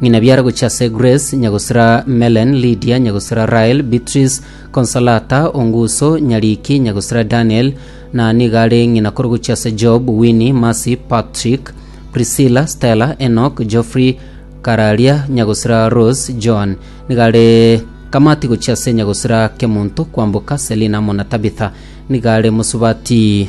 Ng'ina biara gochia ase Grace, nyagosira Melen, Lydia, nyagosira Rael, Beatrice, Consolata, Onguso, Nyariki, nyagosira Daniel, na nigo are ng'ina kore gochia ase Job, Winnie, Mercy, Patrick, Priscilla, Stella, Enoch, Geoffrey, Kararia, nyagosira Rose, Joan. Nigo are Kamati gochia ase nyagosira Kemonto, Kwamboka, Selina amo na Tabitha. Nigo are Mosubati.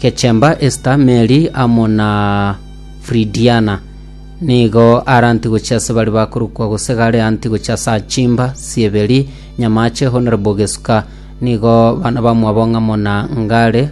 Gechemba Esta, Meri, amo na Fridiana, nigo are antigochia ase baria bakorokwa gose gare antigochia ase Achimba, Sieberi, Nyamache, Honorable Gesuka, nigo bana bamwabo ng'amo na Ngare,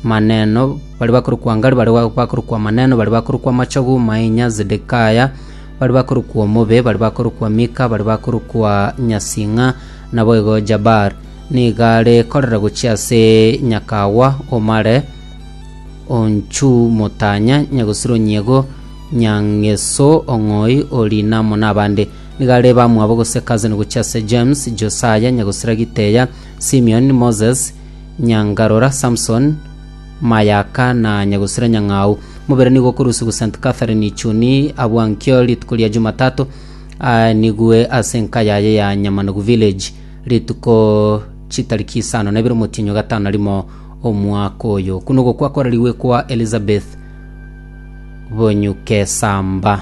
Maneno, baria bakorokwa Ngare, baria ba- bakorokwa Maneno, baria bakorokwa Machogu, Mainya, Zedekaya, baria bakorokwa Omobe, baria bakorokwa Mika, baria bakorokwa Nyasing'a, naboigo Jabar. Nigo are korera gochia ase nyakagwa omare onchumotanya nyagosiro nyiego nyangeso ong'oi ori namo nabande. Nigo are bamwabo gose cousin gochia ase James, Josaya nyagosira giteya, Simeon, Moses, nyangarora, Samson, mayaka na nyagosira nyang'au. Mobere nigo okorusia gose St. Catherine Ichuni abwankio rituko ria Jumatatu, aa nigwe ase enka yaye ya Nyamanogu Village. Rituko chitariki isano na ibere omotienyi o gatano na rimo omwaka oyo, okwo nogokwa kwararigwe kwa Elizabeth Bonyukesamba.